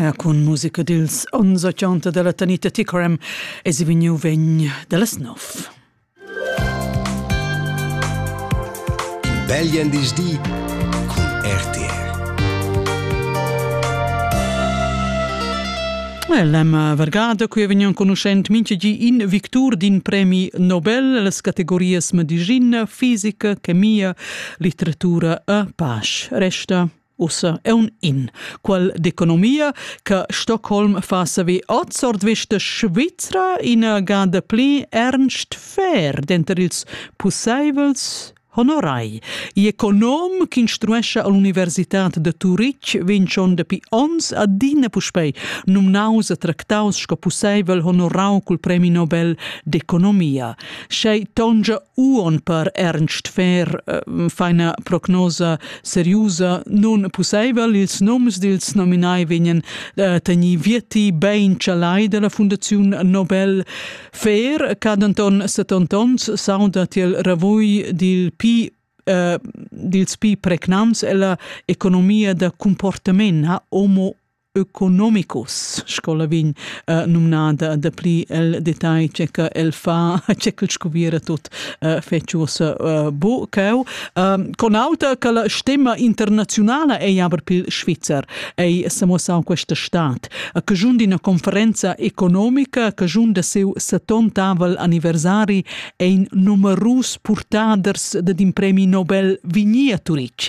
Ja, cun musica dils ons 80 della Tanita Ticorem e si vegniu vegn dallas nov. Belgien dis di cun RTR. L'Emma Vergada, qui è vegnan conoscent minchegi in victur d'in premi Nobel, las categorias medicina, fisica, chemia, litteratura e pace. Resta ussa un in qual d'economia che Stockholm fa savi oz ordvista Svizra ina gada pli ernst fair denter ils pusseivels honorai. I'econom ch'instruescha all'universitad de Turitg vegn schon dapi ons adina puspei numnaus e tractaus sco pusseivel honorau cul premi Nobel d'economia. Schei tongia uon per Ernst Fair eh, feina prognosa seriusa nun pusseivel. Ils noms dils nominai vegnan eh, teni vietti bein chalai della Fundaziun Nobel Fair, ca Anton 70 ons sauda tiel ravui dil Pi eh, dils pi pregnants ella economia da comportament ha homo ökonomicus sco la vegn uh, numnada da pli el detagl che che el fa che quel scoviera tut uh, feciusa uh, bu cau um, con auta che la stemma internazionale ei aber pil Schweizer ei samossau questa stat che giun d'ina conferenza economica che giun da seu 70 anniversari ein numerus purtaders de d'in premi Nobel vigni a Turic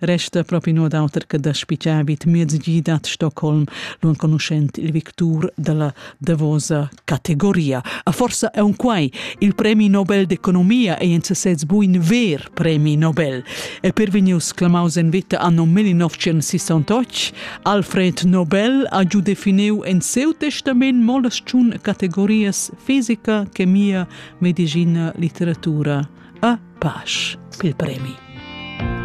resta propi no d'auter che da spitgar vid mezgi dat Stockholm l'enconuschent il victur della davosa categoria. A forza è un quai. Il premi Nobel d'economia è in sesez buin ver premi Nobel. E per venius clamaus en vita anno 1968, Alfred Nobel ha giù definiu en seu testament molas ciun categorias fisica, chemia, medicina, letteratura. A pace pel premi.